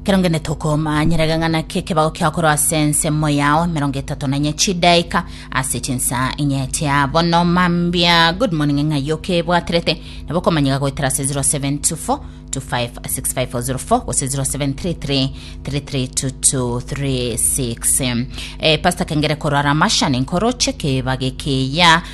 Ekero ngende tokomanyerega ng'a naki ekebago kiakorwa ase ensemo yao emerongo etato na inye chidaika ase chinsa inye chia bono mambia good morning ng'ai okebwaterete nabo okomanyega goetera ase 0724 256504 gose 0733 332236 eh, pastor kengere korwa ramasha ninkoroche kebage keya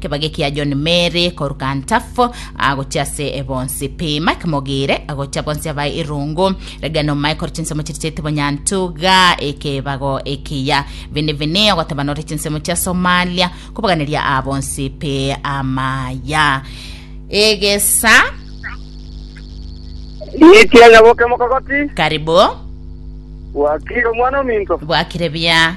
Kebage kia John Mary koruka Ntapho agochia ase bonsi pi Mike Mogire agochia bonsi abae irungu regena omae kore chinsemo chiri chiaite bonyantuga ekebago ekiya vini vini ogoteba nore chinsemo chia Somalia kobaganeria aa bonsi pi amaya egesa Niitie nyaboke mokogoti. karibu Bwakire omwana ominto. bwakire bia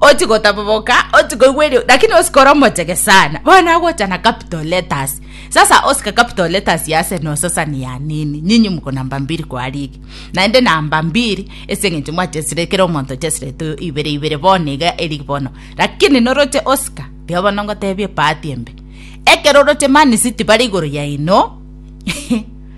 oti gotaboboka oti koigwa erio lakini osikora omochege sana bono agocha na capital letters sasa osika capital letters ya arsenal sasa ni ya nini nyinyi mko namba mbili kwa ligi naende namba mbili ase eng'encho mwachesire kera omonto ochesire tu ibere ibere bono iga eligi bono lakini noroche osika rigo bono ngotebie paati embe ekero oroche man city bare igoro yaino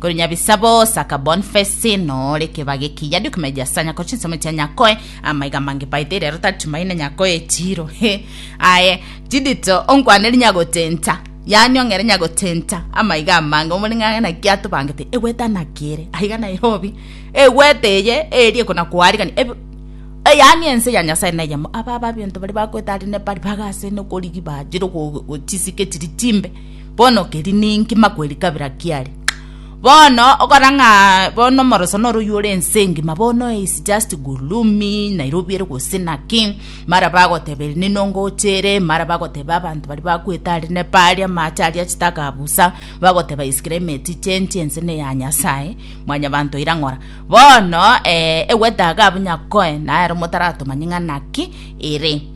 Korende nyabisa bosa ka Bonface nore keba gekiya dio kime gia sanya ko chinsemo chia nyakoe amaiga mange baite rero tari tumaine nyakoe chiro he aye chidito onkwaneri nyagotenta yani ong'ere nyagotenta amaiga amange omori ng'ang'e na kia tobangete egweta nakere aiga Nairobi egweta eye erie kona kwarigani Eb- Eh, yaani ense ya nyasaye neyemo aba ababinto bari bakweta ari nepari bagasene korigi bajire chisike chiri chimbe Bono keri ninki makweri kabira kiare? Bono okora ng'a bono omoroso noro oywo ore ense engima bono is just gurumi, Nairobi ere gose naki, mara bagoteba ere nini ongocha ere, mara bagoteba abanto baria bakwete are neba aria amache aria chitakabusa, bagoteba is climate change ense ne ya Nyasae, mwanyabanto oira ng'ora. Bono eh, egwete iga abwo Nyakoe nere omotaratoma ng'a naki ere.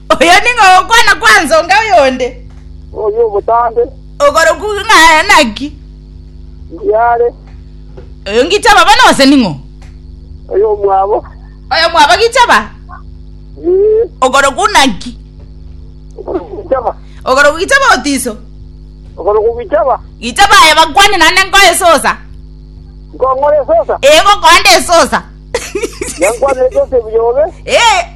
Oyo ning'o ogokwana kwa nsonga oyonde? Oyo obotambe. Okorokwa ng'a naki? Ndiare. Oyo ngichaba bana ose ning'o? Oyo omwabo. Oyo mwaba gichaba? Ee. Okorokwa naki? Okorokwa gichaba. Okorokwa gichaba otiso? Okorokwa gichaba. Gichaba aye bakwane nande nkoye sosa. Nkong'ore sosa. Ee gokonde sosa. Yankwane sosa ebuyobe. Ee.